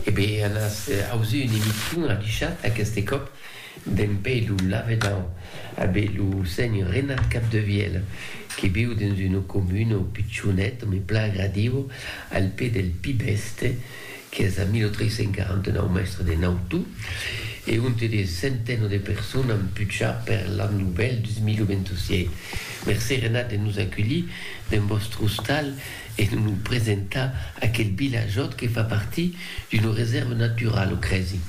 E be an as ausi un emission adichat aqueste còp d'en pei lo lavedan a be lo senhor Renat Capdevièl que viu dens una comuna pichonet me plan agradiu al pè del Pib Èste qu'es a 1349 mèstre de Nautu e onte de centeno de persones an puchat per l'an novèl 2026. Mercé Renat de nos aculhir dens vòstre ostal e de nos presentar aquel vilajòt que fa partir d'una resèrva naturala, o crèsi?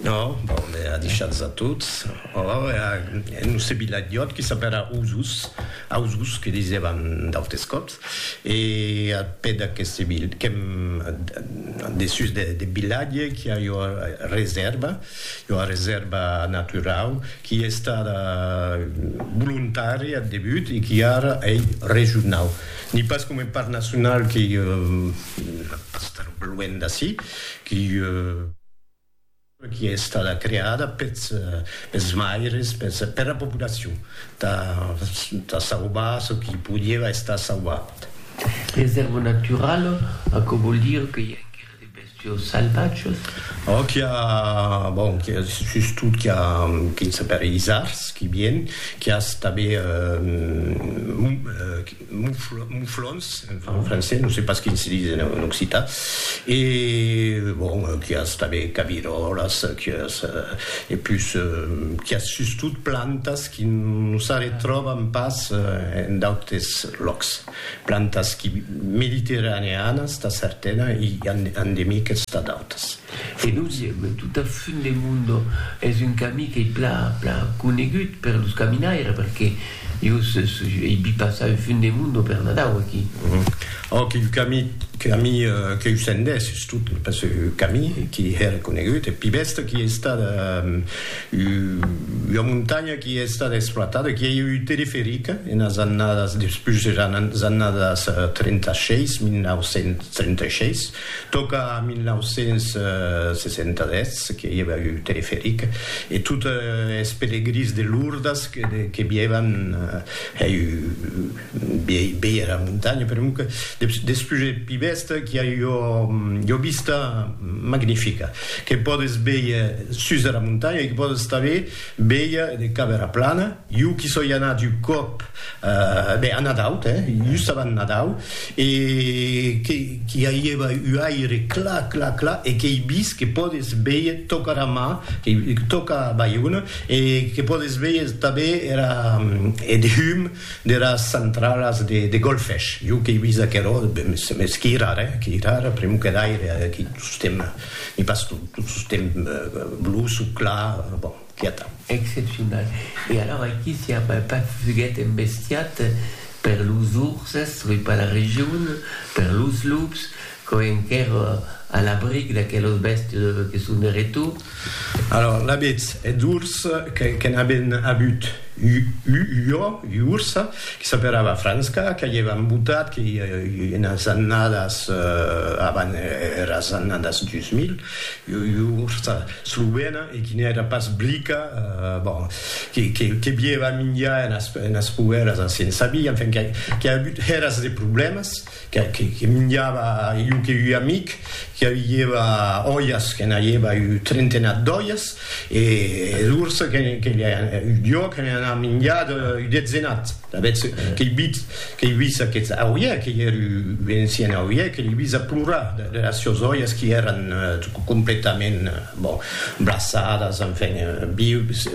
Ò, bon, me a deishats a tots. Ò, e nos ce vilajòt que s'apèra Osos, Ausos que disèvan d'autes còps, e ath pè d'aqueste vil, qu'èm dessús deth vilatge, qu'i a ua resèrva, ua resèrva naturau, qu'i estada volontària ath debut e qu'i ara ei regionau. Ni pas coma un parc nacional qui pas estar luènh d'ací, qui qui estada creada peths peths maires, peths per la populacion tà tà sauvar çò qui podieva estar sauvat. Reserva naturala, aquò vòl dire que i a enquera De bèstios salvatges. Ò qu'i a, bon, qu'i a sustot qu'i a qu'i s'apèri isards, qu'i vien, qu'i as tanben mouflons, enfin en francés, non se pas quin se dis en occitan, e bon, qu'i as tanben caviròlas, qu'i as, e pus, qu'i as sustot plantas qu'i non s'arretròban pas en d'autes lòcs. plantas qui mediterraneanas tà certana e endemiques tà d'autas. E dosièm, tota fin de mundo es un camí qu'ei pla pla conegut per los caminaires perque jo ei vist passar un fin de mundo per Nadau aquí. Òc, un camí camí qu'eu sendés sustot pas un camí qui hèra conegut, eth pi bèsta qui ei estat Ua montanha qui ei estada exploitada, qui ei ua ute de ferica enas annadas despús eras annadas 36, 1936, tòca a 1967 que ei ua ute de ferica e tot es pelegrins de Lourdes que vievan hèi. Bèia era montanha per un despús eth pi bèsta qu'i a ua vista magnifica que pòdes bèir sus era montanha e que pòdes tanben bèir de cap era plana. Jo qu'i soi anat un còp, ben a Nadau, just abans Nadau, e qu'i aièva un aire clar, clar, clar e qu'ei vist que pòdes bèir tòca era mar, tòca Baiona e que pòdes bèir tanben era eth hum deras centralas de golfesh, jo qu'ei vist aquerò, mès qui rara, eh, qui rara, pr'emu que d'aire, aquí tostemp, ni pas tot, tot tostemp bluç o clar, bon, qui atau. Excepcional. E alors aquí si a pas fuguet embestiat per los urses, oi, per la region, per los lups, Quò enquèr a l'abric d'aquelos bèstes que son de retor. Alòr, l'abetz eth urs que n'aben abut u jo, ua ursa, que s'aperava Franska, que i èva embotat, que i enas annadas avan eras annadas 2000, ua ursa slovena e qui n'èra pas blica, bon, que bièva minjar enas poèras a Sensabí, enfin, qu'a abut eras de problèmas. que minjava jo que ua amic que avieva olhas que n'aieva un trentenat d'olhas e lors que jo que n'ai anat minjar un detzenat avètz qu'ei vit qu'ei vist aquest auie qu'ei er un ancien auie que l'ei vist a plorar de las sieus olhas qui èran completament bon blaçadas enfin vius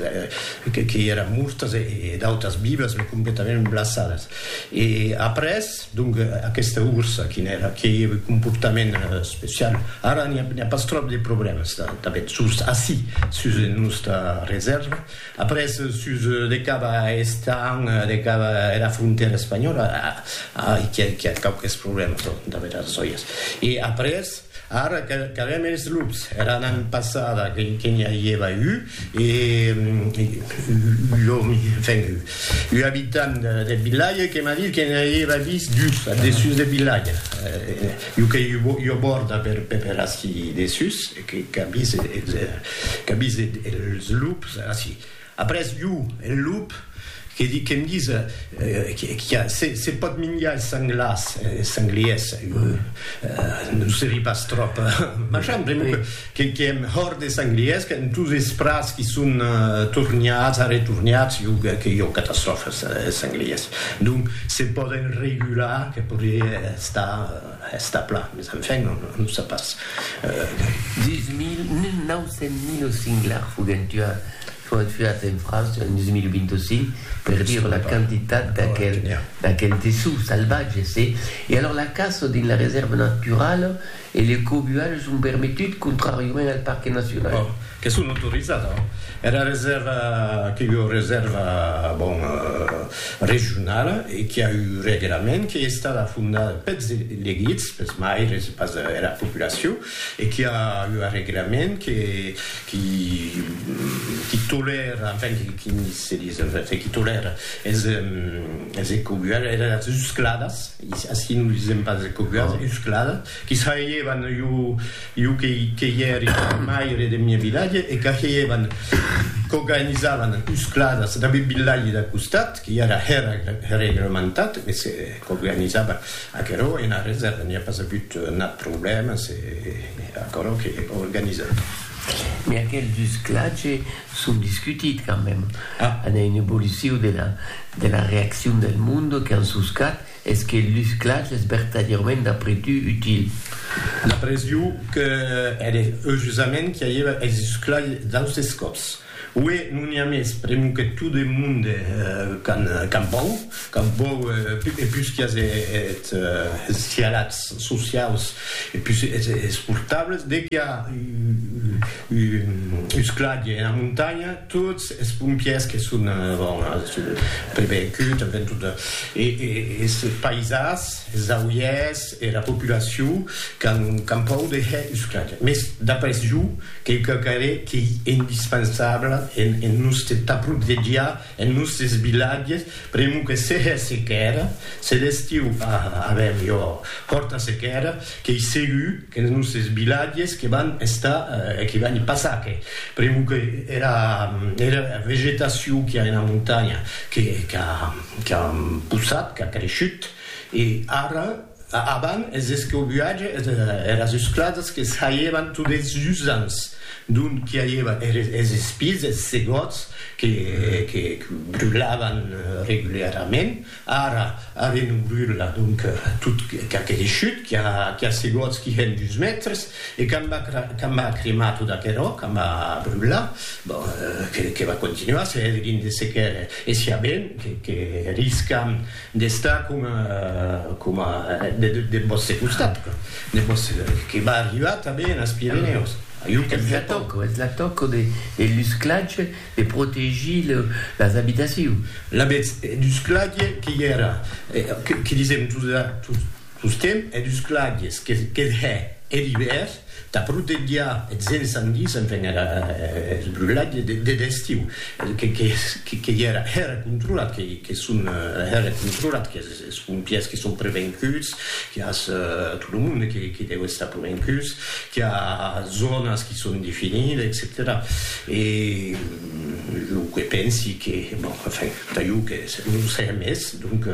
qu'ei era mortas e d'autas vivas completament blaçadas e après Donc aquesta ursa quin èra? Qué ei eth comportament especiau? Ara n'i a pas tròp de problèmas tanben sus ací, sus era nòsta resèrva. Après sus de cap a Estaing, de cap a era frontèra espanhòla, a, a, qu'i a quauques problèmas, damb era arçòias. E après, Ara qu'avèm es lups. Era nan passada que n'i avieva u, e l'òmi, enfin, u abitant deth vilatge que m'a dit que n'i avieva vist dus ath dessús deth vilatge. U qu'ei ua bòrda per ací dessús, qu'a vist es lups ací. Après jo, en lop, que di que'm dise qu'a se pòt minjar es sanglars, es sangliers, jo non serí pas tròp machan, pr'amor que qu'i èm hòrt de sangliers, qu'an tos es prats qu'i son tornats, arretornats, jo que jo catastròfa es sangliers. Donc se pòden regular, que podrié estar. Està plan, mes enfin, non o sap pas. Dins 1900 lo singlar foguèt tuat en França en 2025 per dire la quantitat d'aquel dessous salvatge, se. E alors la caça dins la resèrva naturala e le cobualh son permetut contràriament al parque nacional. Bon, que son autorizat, era resèrva que jo resèrva, bon. regionala e qui a un reglament qui es tada fondada peths elegits, peths maires e pas era populacion e qui a ua reglament que qui tolèra enfin qui se dis enfin qui tolèra es ecobuadas, era uscladas, ací non disèm pas ecobuadas, uscladas. Qui saievan jo que i ère maire deth miei vilatge e qu'ageievan qu'oganizavan uscladas dab eth vilatge d'a costat, qui ère reglementat, e se qu'oganizava aquerò ena reserva, n'i a pas avut nat problèma, se aquerò que organizava. Mès aquels usclatge son discutit quand mème, a n'ai un evoluciu de la reaccion del monde qu'an suscat Es que lus clachs es vertadièrament d'après tu util? D'après jo, que ère eujusament qu'i aguèva es lus clachs d'austes còps. Ué, non i a mès, pr'emu que tot eth monde qu'an pòur, qu'an pòur e pus qu'i as es cialats sociaus e pus es portables, de qu'i a un lus clach ena montanha, Tots es pompièrs que son avon prevengut tanben tot es paisas, es auièrs, era populacion qu'an pòur de hèr usclatge. Mès d'après jo, quauquauque arrè qu'ei indispensable en nòste t'aprotegiar, en nòstes vilatges, pr'amor que se hè sequèra, se l'estiu a avèr jo hòrta sequèra, qu'ei segur, Que ne nos esbilatges que van estar e que van i passar que pr'emu que era era vegetacion qu'i a ena montanha que qu'a qu'a possat, qu'a creishut e ara avant es escobuatge es eras usclasas que saievan tot es jusants d'ont qu'i aieva eres es espises, es segòts que que brulavan reguliarament. Ara, a renobrir la donc tot qu'aquele chut qui a qui a segots qui hèn dus mètres e quand va quand va cremar tot aquerò, quand va brular, bon, que que va continuar se hèt gin de sequer e siá ben que que riscam d'estar coma coma de deth vòste costat, deth vòste que va arribar tanben as Pirenèus. Ajú que me tòco. Es la tòco de lusclatge. De protegir las abitacions. L'avètz dus clague que i èra, que disèm tostemp, hè dus clagues, que hè er ivèr, tà protegiar eths ensandis, enfin era eth brulatge deth estiu, que i èra, hè era controlat, que son hè era controlat, que Es pompièrs que son prevenguts, qu'i a tot lo monde que deu estar prevenguts, qu'i a zònas que son definidas, etcetèra. E lo que pensi que, bon, enfin, entà jo que non siá mès, donc,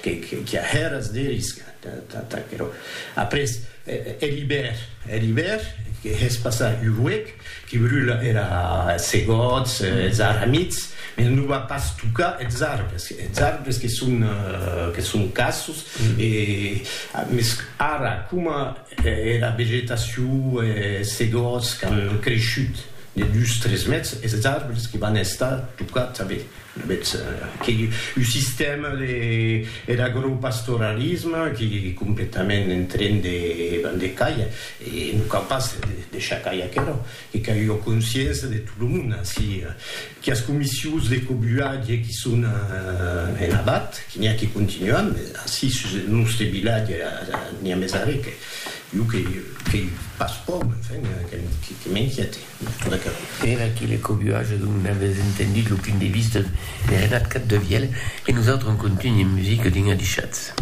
qu'i a hèras de risc entà aquerò. Après, er ibèr, er ibèr, que hèspas a Uruec, Que brula era segòts, es aramits, mès non va pas tocar es arbres, es arbres que son, que son cassos, e, mès ara, coma era vegetacion, es segòts qu'an creishut de dus, tres mètres, es arbres que van estar tocats avé, avetz que un sistèma de, er agropastoralisme, que completament en tren de, van de cair, E non cal pas deishar cair aquerò, que qu'a ua consciença de tot lo monde ací, quias comissions de cobulatge qui son en abat, qui n'i a qui continuan, mes ací sus eth nòste vilatge n'i a mes arrè que jo que qu'ei pas pòur, enfin, que m'inquiète de tot aquerò. Era que le cobulatge dont non avètz entendut lo punt de vista de Renat Capdevièlh, e nosautres en contunh en musica dins Adishatz.